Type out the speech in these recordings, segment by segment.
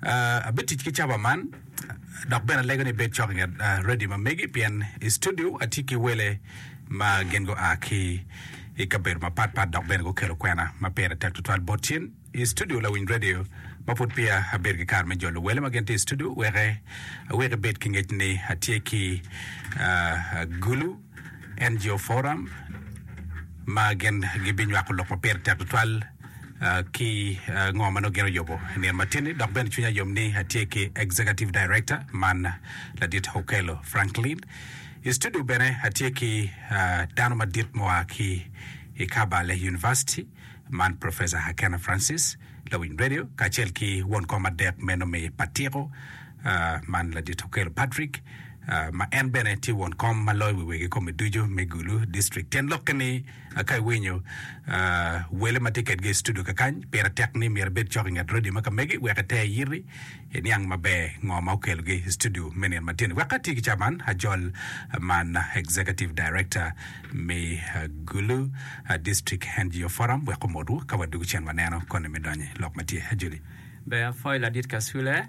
Abitic ki caba man dok bene alego ni ibed cok i nget redio ma megi pien i studio atye ki wele ma gin gua ki i kabedo mapatpat dok bene gukelo kwena ma pire tek tutwal bot cen i studio lawiny redio ma pud peya abedo ki kare me jolo wele ma gin tye i studio weke awek ibed ki ngec ni atye ki Gulu NGO Forum ma gin gibinywako lok ma pire tek tutwal. ki ngo ma nongo gin oyubo nino matin-ni dok bene cwinya yom ni atye ki Executive Director man ladit Okello Franklin. I studio bene atye ki ah, dano madit mua ki i Kabale University man Professor Hakena Francis lawiny radio kacel ki won kom adek meno me Patiko ah, man ladit Okello Patrick ah, ma en bene tye won kom ma loyo wi wegi kome ducu me Gulu District. Tyen lokke ni Ka iwinyo wele ma tye kedgi i studio kakany, pire tek ni myero ibed cok i nget redio ma ka megi wek ite iyiti iniang maber ngo ma okelogi i studio me nino matin. Wek ati ki caman, ajol man Executive Director me Gulu District NGO Forum wek omotwu ka wadwogo cen waneno koni me donyo i lok ma tye. Ajoli. Ber, Foil Adit Kasule.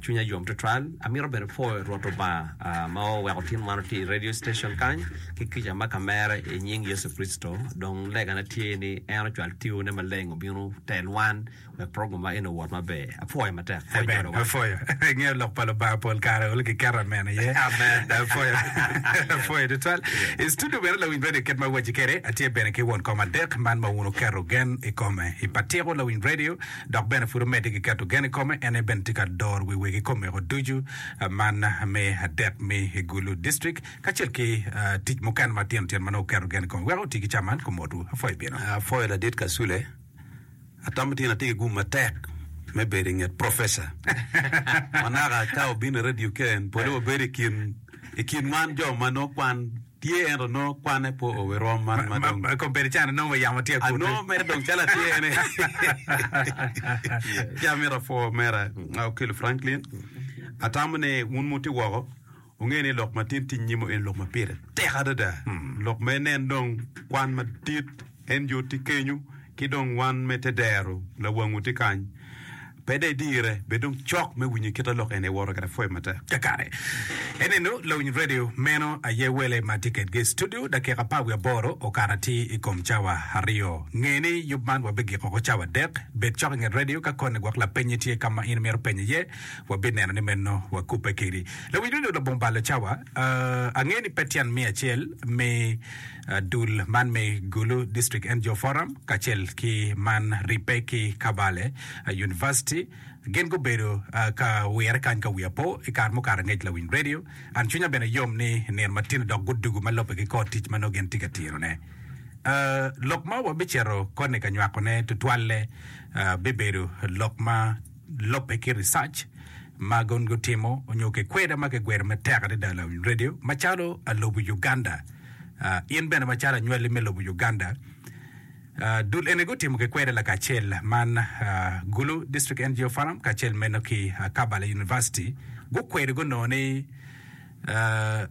Cwinya yom tutwal. Amito bene pwoyo Rwot Lubanga ma oweko tin man otye i radio station kany ki kica ma ka mere i nying Yecu Kricito. Dong legana tye ni en ocwal Tione Maleng obino tel wan wek program ma eni owot maber. Apwoyo matek. Pwoyo Amen. Nyodowa. Apwoyo. Ingeyo lok pa Lubanga pol kare olo kiketo amen iye. Amen. Apwoyo. Apwoyo tutwal. I studio bene lawiny radio kit ma awaci kwede, atye bene ki won kom adek man ma wun wuketo gen i kome. I pa Tiko Lawiny Radio, dok bene pud omedde ki keto gen i kome. En aye bene tye ka doro wi wegi komeko ducu man me adet me Gulu District kacel ki tic mukene matino tino ma nongo oketo gen i kome. Wek oti ki ca man, kumotwu. Apwoyo bino. Apwoyo ladit Kasule. Atamo tyen atye ki gum matek me bedo i nget Professor. Manaka ka obino i radio kene, pole wabedo i kin, i kin wan jo ma nongo kwan. tye ento nongo kwanne po o wi rwom man ma dong. Ma kombeddi can anongo wa yamo tye akutte. Anongo mere dong calo atye ene. Ci amito apwo mera Okil Franklin, atamo ni wun muti woko wunge ni lok ma tin tye nyim-mu eni lok ma pire tek adada. Lok ma inen dong kwan madit. En jot tye kenyo, ki dong wan me te dero lawangu tye kany. Pe dai dire, bed dong cok me winyo kit a lok eni woto kede pwoyo matek. Kakare eninu lawiny redio meno aye wele ma tye kedgi i studio. Dakika apar wiye aboro okato atir i kom cawa aryo. Nge ni yub man wabigiko oko cawa adek. Bed cok i nget redio ka koni gwok lapenyi tye ka ma in imito penye iye, wabineno ni meno wakubbe kedi. Lawiny redio labongo balo cawa, Ange ni pe tyen miya acel me. Dul man me Gulu District NGO Forum kacel ki man ribbe ki Kabale University gin gubedo ka wirre kany ka wiya po i kare mukato angec lawiny radio. An cwinya bene yom ni nino matino dok gudugu ma lobbe ki kor tic ma nongo gin tye ka tirone. Lok ma wabicito koni ka nywakone tutwalle bibedo lok ma lobbe ki research ma gin gutimo nyo kikweda ma kigwero matek adada lawiny radio macalo alubu Uganda. In bene macalo anywalli me lobo Uganda, dul eni gutimo ki kwede lakacel man Gulu District NGO Forum kacel meno ki Kabale University gukwedo gunongo ni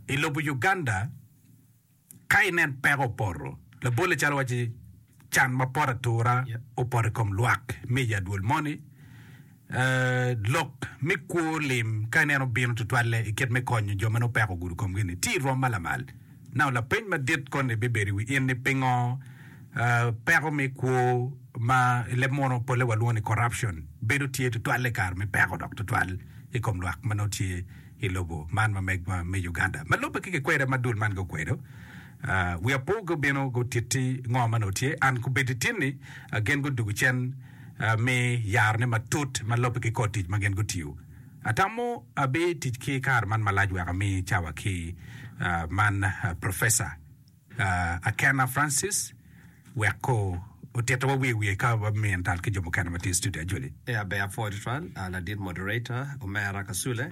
i lobo Uganda ka inen peko opoto labolle calo waci Can mapol atura opoto i kom lwak me i adwol moni. Lok me kwo lim ka ineno bino tutwalle i kit me konyo jo ma nongo peko ogudo komgi-ni tye i rwom ma lamal. Nano lapeny madit koni bibedo i wi in ni pingo peko me kwo ma i leb muno polle walwongo ni corruption bedo tye tutwalle i kare me peko dok tutwal i kom lwak ma nongo tye i lobo man ma megwa me Uganda ma lubbe ki kikwede ma dul man gukwedo. Wi apo gubino gutitti ngo ma nongo tye, and kubedi tinni gin gudugu cen mi yaro ne matut ma lobbe ki kor tic ma gin gutiyo. Atamo abi tic ki kare man malac wek ami cawa ki man Professor Akena Francis wek ko otito wa wiye wiye ka wa miyo tal ki jo mukene ma tye i studio ajoli. Abe apwoo tutwal ladit moderator omera Kasule.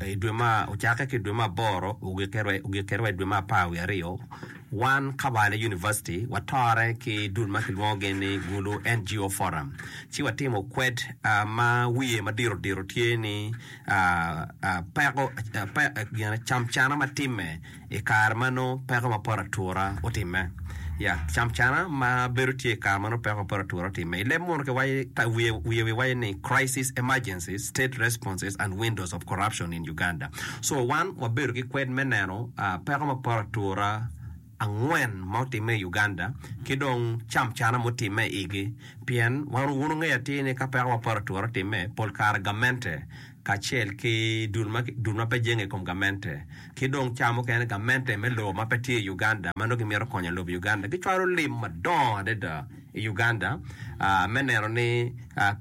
I dwe ma ocakke ki i dwe me aboro ogikke wa i dwe me apar wiye aryo, wan Kabaale University watore ki dul ma kilwongo gin ni Gulu NGO Forum ci watimo kwed ma wiye ma diro diro tye ni peko cam cana ma timme. I kare ma nongo peko ma pot atura otimme, ya, camcana ma bedo tye i kare ma nongo peko ma pot atura otimme. I leb munu kiwaco, ta, wiye, wiye wi waco ni Crisis, Emergencies, State Responses, and Windows of Corruption in Uganda. So, wan wabedo ki kwed me neno ah, peko ma pot atura angwen ma otimme i Uganda, ki dong camcana ma otimme i igi. Pien, wan, wun wungeyo atir ni ka peko ma pot atura otimme, pol kare gamente, kacel ki dul ma pe jenge i kom gamente, ki dong cawa mukene gamente me lobo ma pe tye i Uganda ma nongo gimito konyo lobo Uganda gicwalo lim madongo adada i Uganda me neno ni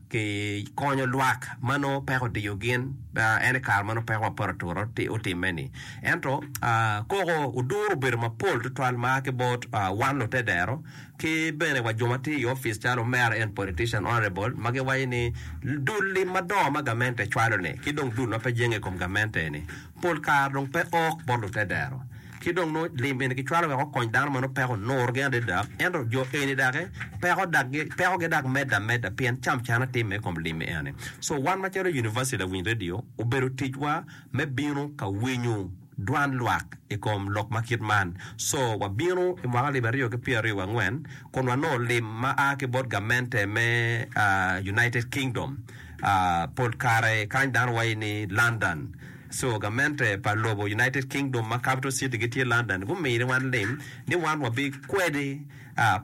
kikonyo lwak ma nongo peko odiyo gin en i kare ma nongo peko ma poto atura otimme ni. Ento koko oduro obedo mapol tutwal ma ki bot wan lutedero Ki bene wa jo ma tye i opic calo Mayor and Politician, Honourable, ma giwaco ni dul lim madongo ma gamente cwalo ni ki dong dul ma pe jenge i kom gamente eni pol kare dong pe ok bot lutedero ki dong nongo lim eni kicwalo wek okony dano ma nongo peko onurgi adada ento jo eni daki peko dak gi peko gi dak medde ameda pien cam cana timme i kom lim eni so wan macalo University Lawiny Radio obedo ticwa me bino ka winyu dwan lwak i kom lok ma kit man. Co wabino i mwaka alip aryo ki pyeraryo wangwen kun wanongo lim ma a ki bot gamente me United Kingdom, pol kare kany dano wayi ni London. Co gamente pa lobo United Kingdom ma capital city gi tye London gumini wan lim ni wan wabi kwedi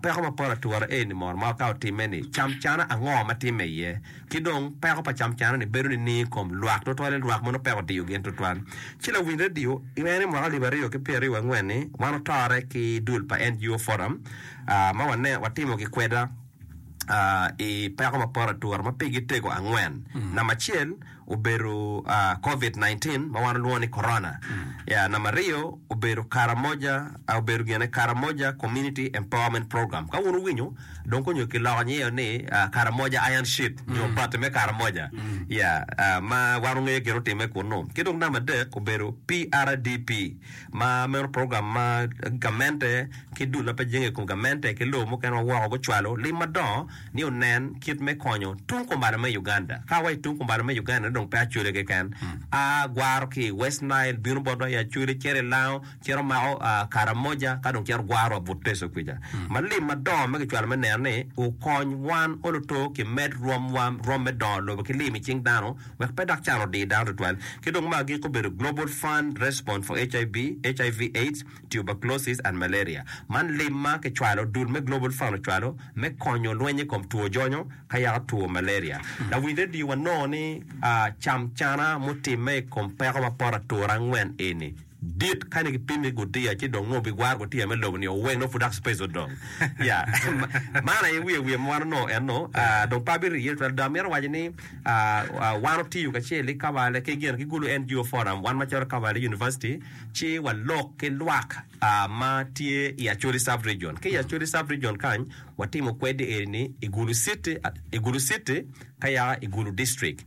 peko mapol atura eni mono ma wakato timme ni cam cana ango ma timme iye. Ki dong, peko pa camcane-ni bedo nining i kom lwak, tutwalle lwak mono peko diyo gin tutwal? Ci lawiny redio iwenge ni mwaka alip aryo ki pyeraryo wangwen ni wan otore ki dul pa NGO Forum ma wane watimo gikweda i peko mapor atura ma pigi tego angwen. Namba acel obedo Covid 19 ma wan olwongo ni Corona. Namba aryo obedo Karamoja I obedo gin ni Karamoja Community Empowerment Program. Ka wun wuwinyo, dong ko nyo ki loko nyeyo ni ah, Karamoja Iron Sheet nyo bati me Karamoja. Ya, ah, ma wan wungeyo gin otimme kunnu. Ki dong namba adek obedo PRDP, ma meno program ma gamente ki dul ma pe jenge i kom gamente ki lobo mukene ma woko gucwalo lim madongo ni onen kit me konyo tung kumbalo me Uganda. Ka wa i tung kumbalo me Uganda-ni dong pe Acholi keken, a gwaro ki i West Nile bino botwa i Acholi cito i Lango, cito mako Karamoja ka dong cito gwarwa but Teso kwica. Ma lim madongo ma kicwalo me neno ni okony wan oloto kimed rwom wa rwom me dongo lobo ki lim i cing dano wek pe dok can odi dano tutwal. Ki dong ma agiko obedo Global Fund Response for HIB, HIV, AIDS, Tuberculosis and Malaria. Man lim ma kicwalo, dul me Global Fund ocwalo me konyo lweny i kom two jonyo ka yaka two malaria. Lawiny redio wanongo ni camcana mutimme i kom peko ma poto atura angwen eni. dit kani ki pimi gutiya ci dong nongo bi gwaro gutiya me lobo ni o weng nongo pud dok space odong ya man aye wiye wiye ma wan onongo eno dong pe abi riye twel dong amito waco ni wan otiyo kacel ki kawale ki gin ki gulu NGO forum wan macalo kawale University ci wa lok ki lwak ma tye i Acholi sub region ki i Acholi sub region kany wa timo kwedi eni ni i gulu city i gulu city ka ya i Gulu District.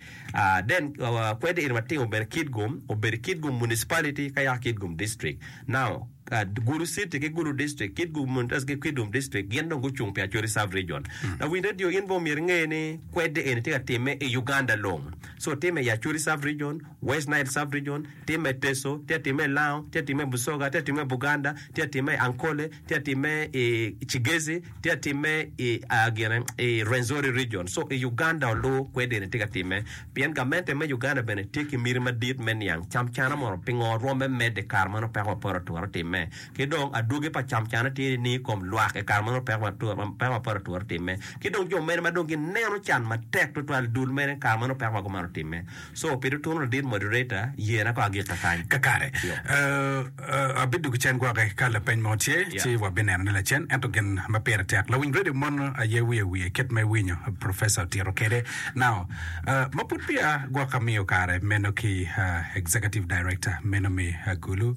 Then kwede in watino bene Kitgum obedo Kitgum Municipality ka ya Kitgum District. Now Gulu City ki Gulu District, Kitgum Municipality ki Kitgum District gin dong gucung pi Acholi Sub Region. Lawiny radio in bene omyero inge ni kwede eni tye ka timme i Uganda long. So timme i Acholi Sub Region, West Nile Sub Region, timme i Teso, tye ka timme i Lango, tye ka timme i Busoga, tye ka timme i Buganda, tye ka timme i Ankole, tye ka timme i Kigezi, tye ka timme i ah, gine i Rwenzori region. So i Uganda olur kwedini tye ka timme. Pien gamente me Uganda bene tye ki miti madit me niang camcana mono pingo rwomme medde i kare ma nongo peko ma poto oturo timme. Ki dong adwogi pa camcana tye ni i kom lwak i kare ma nongo peko ma turo peko ma poto oturo timme. Ki dong jo mene ma dong gineno can matek twatwal dul mene i kare ma nongo peko ma kumeno otimme. So, pi tutunu ladit moderator, yena ko agikka kany. Kakare. Yoo. Abidwogo cen gwoke ka lapeny mo tye, ci wabineno ne lacen. Ento gin ma pire tek, lawiny radio mon aye wiye wiye kit ma iwinyo Professor otito kede nao. Ma pud peya gwok amiyo kare meno ki Executive Director meno me Agulu.